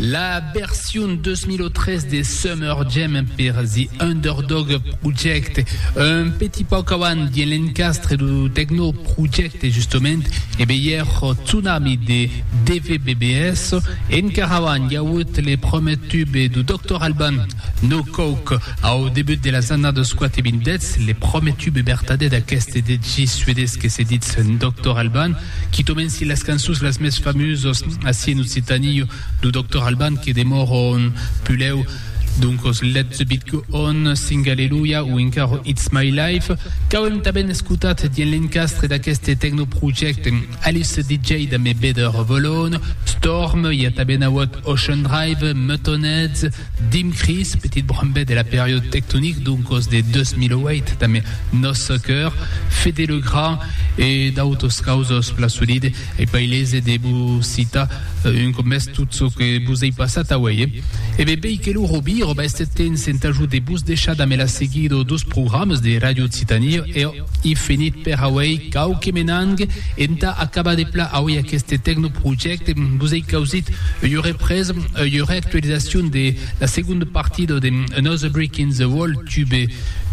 La version 2013 de Summer Jam per The Underdog Project, un petit pauc avant dins l'encastre du Techno Project justement, e beier Tsunami de DVBBS, encara avant i a auut le prumèr tube du Doctor Alban, No cauc, au debut de las annadas quate vindètz le pròme tube bertadè d'aqueste DJ suedés que se ditz Doctor Alban, qui tomenci las cançons las mès famusas ací en Occitanie, lo Doctor Alban que demòra ont pulèu, doncas Let the Beat Go On, Sing Alleluia o encara It's My Life, qu'auem tanben escotat dins l'encastre d'aqueste tecnoprojècte Alice DJ damb Beder Volone, Storm, i a tanben auut Ocean Drive, Muttonheads, Dimcris, petit brambet de la period tectonic d'un còs de 2008 damb nòs cœur, Fede Le Grand e d'autos causos plan solide, ei pas ailese de vos citar un còp mès tot çò que vos ei passat aué. E be bèi que lo Robir o Baistetens entà jo de vos deishar damb la seguida dos programas de Radio Occitanie e I finit per auei quauque menang entà acabar de pla auei aqueste tecnoprojècte vos ei causit ua represa, ua reactualizacion de la segonda partida de Another Brick in the Wall, tube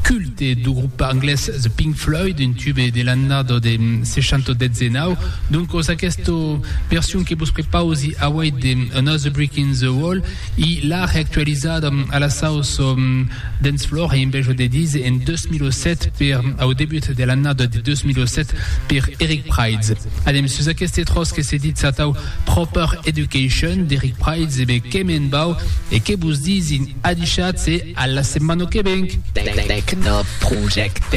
culte dau grop anglés The Pink Floyd, un tube de l'annada de 619. Doncas, aquesta version que vos prepausi auei de Another Brick in the Wall, i l'a reactualizada a la sauça Dance Floor e Enveja de Dise en 2007 per au debut de l'annada de 2007 per Eric Prydz. Anem sus aqueste tròç que se ditz atau Proper Education d'Eric Prydz e be que me'n vau e que vos disin adishatz e a la setmana que venc! Techno Project.